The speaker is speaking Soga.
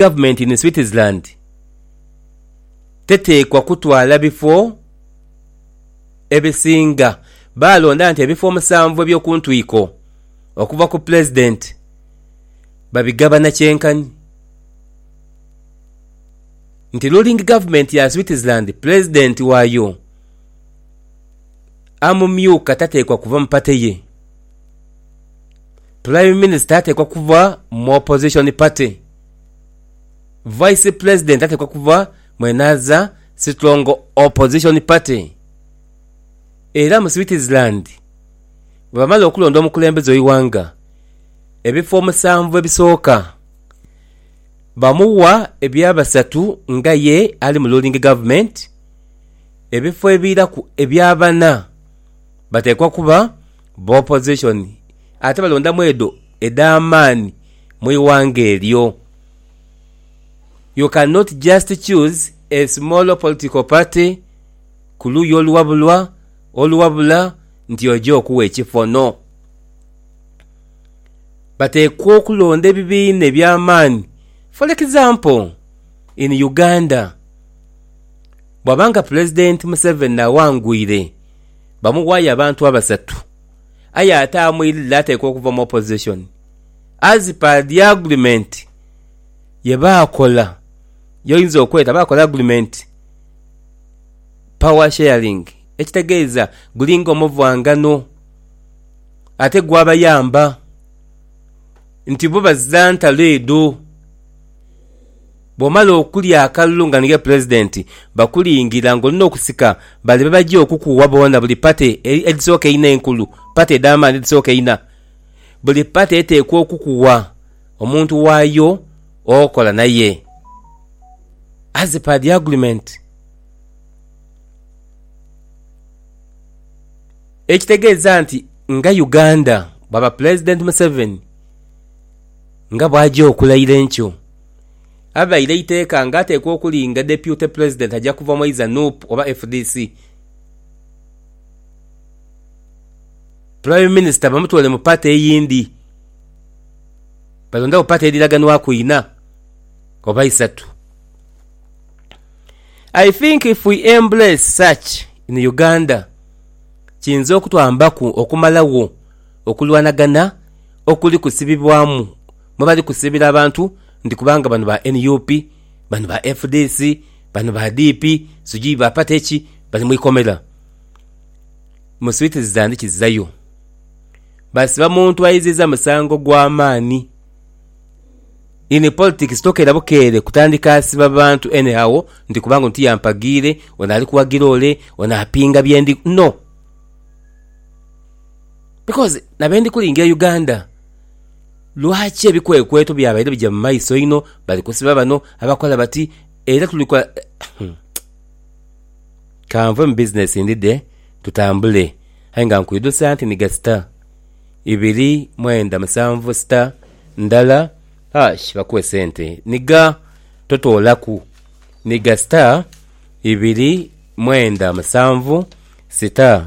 government in Switzerland teteekwa kutwala bifo ebisinga baalonda nti ebifo omusanvu eby'okuntwiko okuva ku Pulezidenti babigabana kyenkanhi nti ruling government ya Switzerland Pulezidenti waayo amumyuka tateekwa kuva mu pate ye. Prime Minister ateekwa kuba mu Opposition Party. Vice President ateekwa kuba mwenaaza Strong Opposition Party. Era mu Switzerland bwebamala okulonda omukulembeze w'eighanga, ebifo omusanvu ebisooka bamuwa ebya basatu nga ye ali mu ruling government, ebifo ebiiraku ebya bana bateekwa kuba b'opozishoni ate balondamu edho edh'amaani mu ighanga eryo. You can not just choose a small political party ku luuyi oluwabulwa oluwabula nti oja okuwa ekifo, no. Bateekwa okulonda ebibiina eby'amaani. For example, in Uganda, bwaba nga Pulezidenti Museveni awangwire. bamuwayo abantu abasatu aye ate amwirire atekwa okuva mu opposition as per the agreement yebaakola yoyinza okweta baakola agreement power sharing ekitegeeza gulinga omuvwangano ate gwabayamba nti bo bazira ntalo edho. Bw'omala okulya akalulu nga niiwe Pulezidenti, bakulingira ng'oli n'okusika bale be baja okukuwa boona buli pate edhisooka einho enkulu, pate edh'amaani edhisooka einha. Buli pate eteekwa okukuwa omuntu waayo okola naye as per the agreement. Ekitegeeza nti nga Uganda bwaba Pulezidenti Museveni nga bw'aja okulayira enkyo, avaire eiteeka nga ateekwa okulinga Depute Pulezidenti aja kuva mwaiza nup oba fdc. Prime Minister bamutwale mu party eyindi. Balondagho party edhiraganwaku inha oba isatu. I think if we embrace such in Uganda kiyinza okutwambaku okumalagho okulwanagana okuli kusibibwamu. mwe bali kusiibira abantu nti kubanga bano ba nup, bano ba fdc, bano ba DP, sijui ba pate ki, bali mu ikomera. Mu swiiti zitandikizzayo. Basiba muntu ayiziiza musango gwa maani. In politics tokeera bukeere kutandika asiba bantu anyhow nti kubanga ono tiyampagiire, ono ali kuwagira ole, ono apinga bye ndi. No! Because na be ndi kulingira Uganda. Lwaki ebikwekweto byabaire bija mu maiso inho? Bali kusiba bano, abakola bati era tuli kola Kanve mu bizinesi ndidhe tutambule aye nga nkwidhusa nti nhiga sita ibiri mwenda musanvu sita ndala ash bakuwe sente nhiga totoolaku nhiga sita ibiri mwenda musanvu sita